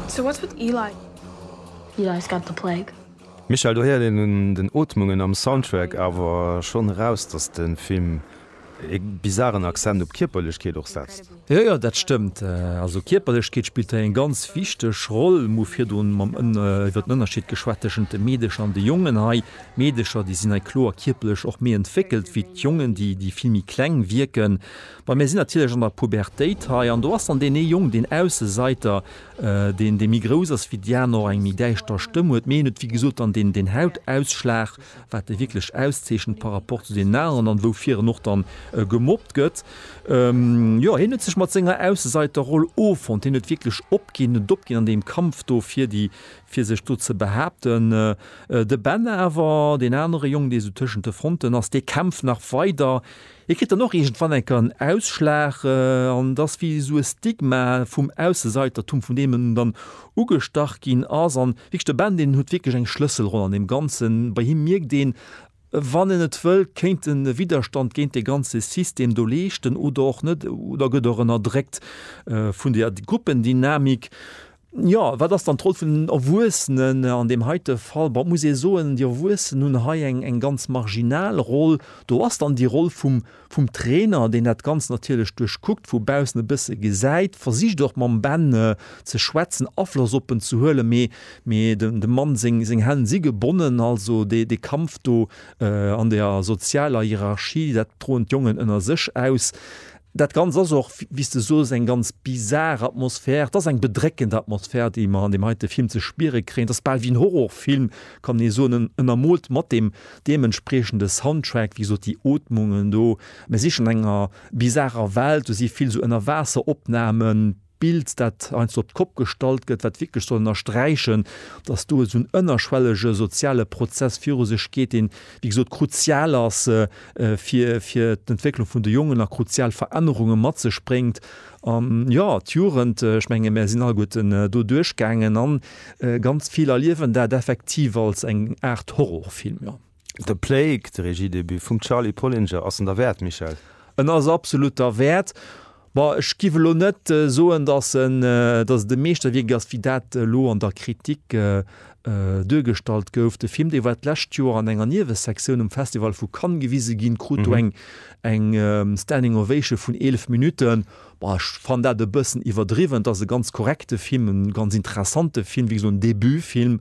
So what's with Eli? Eli's got the plague. Michel, do héiert een un den Ootmungen am Soundtrack awer schonn eraus, dass de Film ee bizaren Accent op Kierperlechkeet och setzt. Jo, jo, dat stëmmt. Also Kierperlechkeet spillt hei eng ganz wichteg Roll. Mer hu virdrun mam iwwer den Ënnerscheed geschwat tëschent de Meedecher an de Jongen hei. D'Meedecher, déi sinn hei kloer kierperlech och méi entwéckelt wéi d'Jongen, déi vill méi kleng wierken. Bon, mir sinn natierlech an der Pubertéit hei an do ass dann deen ee Jong, deen Ausseseiter, deen, dee méi grouss ass wéi déi aner, och eng méi däischter Stëmm huet. Mee hien huet, wéi gesot, dann deen, deen Hautausschlag, wat e wierklech auszeechent par rapport zu deenen aneren an woufir en och dann gemobbt gëtt. Jo, hien huet sech mat senger Ausseseiterroll offonnt, hien huet wierklech opginn, huet opginn an deem Kampf do fir déi, fir sech do ze behaapten. De Ben awer, deen anere Jong, dee sou tëschent de Fronten ass, dee kämpft nach weider. Hie kritt dann och iergendwann enker en Ausschlag an et ass wéi esou e Stigma vum Ausseseitertum, vun deem en dann ugestach ginn ass. An wierklech de Ben, deen huet wierklech eng Schlësselroll an deem Ganzen. Bei him mierkt een, wann en et wëllt, kéint en e Widderstand géint dee ganze System do leeschten oder och net oder gëtt och ënnerdréckt vun där Gruppendynamik. Jo, wat ass dann d'Roll vun den Erwuessenen an deem heite Fall? Bon, et muss ee soen, déi Erwuessen hunn hei eng, eng ganz marginal Roll. Do ass dann déi Roll vum, vum Trainer, deen dat Ganzt natierlech duerchkuckt, vu baussen e bësse gesäit, versicht och mam Ben ze schwätzen, Afloss op en ze huelen, mee, mee dem, dem Mann seng, seng Hänn si gebonnen. Also dee, dee Kampf do an der sozialer Hierarchie, dat droen d'Jongen ënner sech aus. Dat Ganzt ass och, wéi s de soos, eng ganz bizar Atmosphär. Et ass eng bedréckend Atmosphär, déi mer an deem heite Film ze spiere kréien. Et ass bal wéi en Horrorfilm, kann ee soen. En ënnermoolt mat deem deementspriechende Soundtrack, wéi gesot, déi Ootmungen do. Mir si schonn an enger bizarer Welt, do si vill esou Ënnerwaasseropnamen. Bild, dat heiansdo op d'Kopp gestallt gëtt, wat wierklech soll ënnersträichen, dass do esou en ënnerschwellege soziale Prozess viru sech geet, deen, wéi gesot, kruzial ass fir d'Entwécklung vun de Jongen a kruzial Verännerunge mat sech bréngt. An, jo, d'Jugend, ech menge mir sinn alleguerten do duerchgaangen a ganz vill erliewen dat effektiv als eng Aart Horrorfilm, jo. De Plague, de Regiedebut vum Charly Pollinger, ass en derwäert, Michèle? En ass absolut derwäert. Bon, ech giff elo net soen, dass en, dass et e Meeschterwierk ass, wéi dat elo an der Kritik duergestallt gouf. De Film, dee war d'lescht Joer an enger Niewesektioun um Festival vu Cannes gewise ginn, krut do eng eng Standing Ovation vun 11 Minutten. Bon, ech fannen dat e bëssen iwwerdriwwen. Et ass e ganz korrekte Film, e ganz interessante Film, wéi gesot en Debutfilm.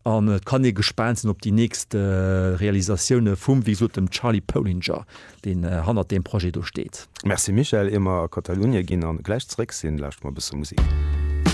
An et kann ee gespaant sinn op déi nächst Realisatioune vum, wéi gesot, dem Charly Pollinger, deen hannert deem Projet do steet. Merci Michèle, ier mer a Katalunie ginn an gläich zeréck sinn, lauschteren mer e bësse Musik.